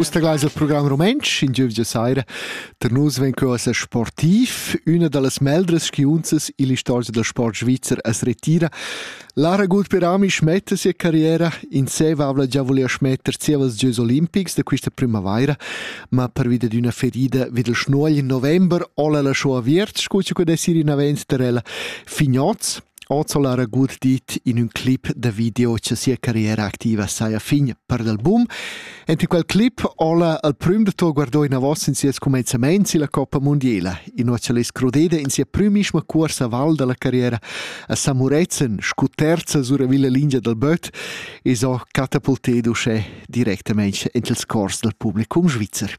Uss tegleis il program rumentsch in giuvgia saira. Tar nus vegn cheu a sportiv. Üna dallas meldras skiunzas il istorgia da sport svizzer as retira. Lara Gutperami smetta sia carriera. In seva avla già volia smetter zievas gieus olimpics da questa primavaira, ma pervida d'una ferida vid il schnuogl in november ola la shoa viert, scuccia quei da siri navenz tar ella Fignoz. Hoz ha'l era gut dit in ün clip da video cha sia carriera activa saja fin per l'album. Ent in quel clip ho'la al prüm da tour guardò inavos in sies cumenzamaints illa Coppa Mundiela, inua cha'l es crudeda in sia prümischma cuorsa val da la carriera a San Murezzan scu terza suravilla lingia dal böt e s'ho catapultedo uschè directamaing int ils cors dal publicum svizzer.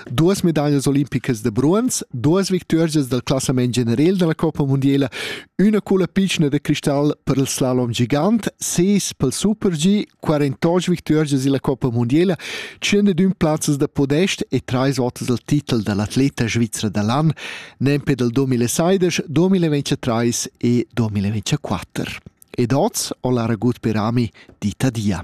duas medaglas olimpicas da bronz, duas victorias dal classament general della Coppa Mondiala, una culla piccina da cristal per il slalom gigant, ses pel Super G, 48 victorias illa Coppa Mondiala, 101 plazzas da podest e trais votas al titel dall'atleta svizra da l'an, nempe dal 2016, 2023 e 2024. Ed oz ho la ragut per ami dita dia.